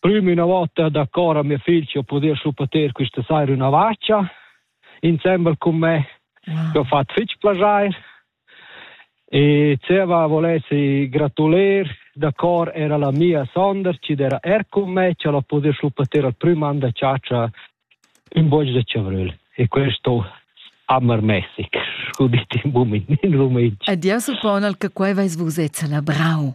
prüm üna vota da cor a mia figl che ho pudü schlupater quista saira üna vacha insembel cun me wow. che ho fatto fich piacer e Zeva volessi gratuler da cor era la mia Sonder che era er con me che l'ho pudü schlupater al prüm an da ciaccia in bosch de Chavrel e questo amar Messig, scudit in bumin in Rumenia. Adieu suppon al che quai vais vus ezza la brau.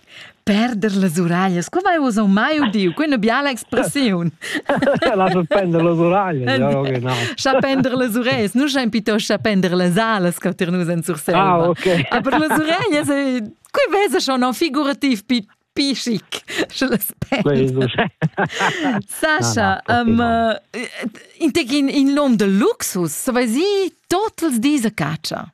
Perder las uraglas, qua vai uss mai udiu, quella biala expressiun. La pender las uraglas. Chapender las ureglias, nu schein piuttost chapender las alas che tir nus en Surselva. Ah, okay. Aber las ureglias, qui vesa schon non figurativ pi pi chic. Sascha, um, uh, in, in, in lom de luxus, so vai si, totals diese caccia.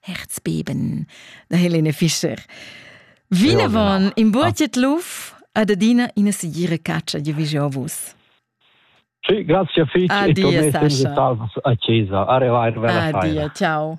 Herzbeben da Helene Fischer. Vinavon in buotiet luf ad adina ina sigira caccia di vus. Sì, grazie fich. Addio, e Sascha. a Chiesa. Arriva, arriva la Adia, ciao.